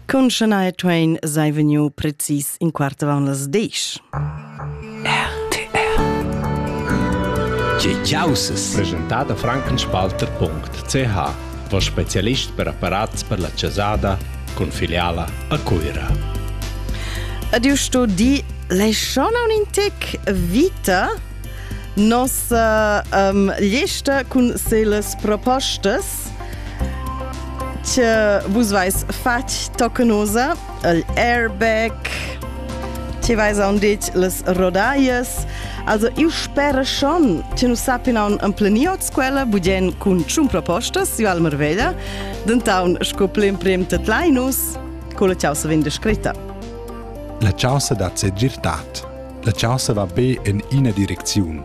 Cun Shania Twain sei vegniu precis in quart avant las disch. RTR Tge caussas? Presentada frankenspalter.ch va specialist per apparats per la casada con filiala a Cuira. Adiusto di le schona un intec vita nos um, liesta cun seles propostas che vus vais fatg tocanosa el airbag ti vais a un dit les rodaies also io spero schon che nu sappinon an planiot quella budien cun tschun propostas io al Marveglia dentaun sco l'emprim tet Linus con la causa vin descritta La causa da segirtad La causa va be in ina direcziun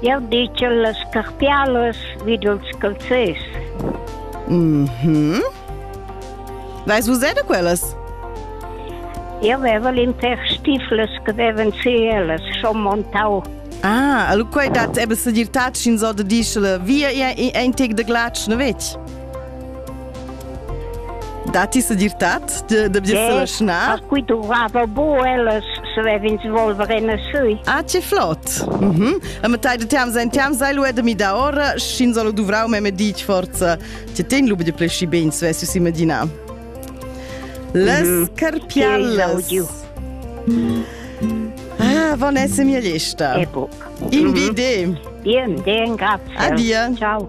Jau ditg a las scarpialas vi dals calzers. Mm -hmm. Vais vus da quellas? Eu aveva l'inter stiflas che avevan si ellas, schon montau. Ah, allora quai dat eben se dir tatsch in so de dischele, via in tec de glatsch, ne vec? Datti segirtad da, da dir yes. snar? Qui durava bo ellas svevin svolvere na sui. Ah, che flott! Mm -hmm. A metà de team sein team sei lu edemi da ora, schin solo duvrau me medic forza. Ti ten lubi de plesci ben svessu si medina. Les mm -hmm. carpiallas. Ah, van esse mia lista. E bu. Invide. Bien, den grazie. Adia. Ciao.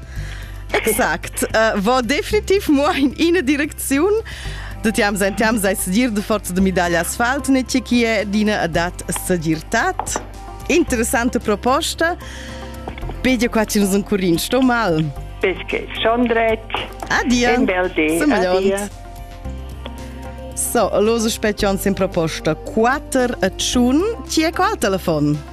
Exact. Uh, va definitiv mo in ina direcziun. Da tiam sein tiam sei segir de forza de medaglia asfalt ne ti chi è d'ina adat segirtat. Interessante proposta. Pedia qua ci nos un curin, sto mal. Perché schon dret. Adia. Un bel di. Adia. So, los specchions in proposta 4 a 1. Chi è qua al telefon?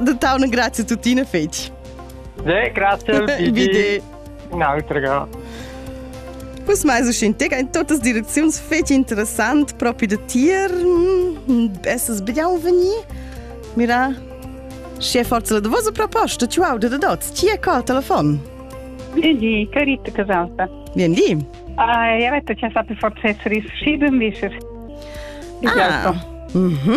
Da tauna grazie tuttina fetg. De, grazie. Vide. Un'altra. Quest mais es in tega in totas direcziuns fetg interessant propi da tier. Essas bedau venir? Mira, sche forza la vosa proposta, tu auda da dots. Ti è col telefon? Vedi, carita casata. Vien di? Ah, io ho detto che sa per forza essere riuscito invece. Ah, mhm.